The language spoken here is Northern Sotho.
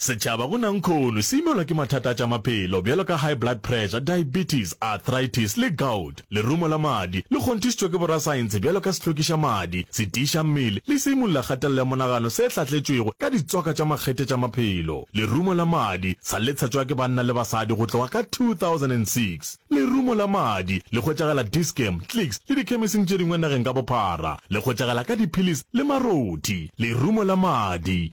Setšhaba go nangkhono se imelwa ke mathata a tša maphelo bjalo ka high blood pressure, diabetes, arthritis le gout, lerumo la madi, le kgonthišitšwe ke borasaentshe bjalo ka sehlokiša madi, setiiša mmele le seimulla kgatelelo ya monagano se hlatletšwego ka ditswaka tša makgethe tša maphelo. Lerumo la madi sa le tshatšwa ke banna le basadi go tloga ka 2006. Lerumo la madi le hwetšagala Dis-Chem, Clicks le dikhemesing tše dingwe nageng ka bophara. Le hwetšagala ka diphilisi le marothi. Lerumo la madi.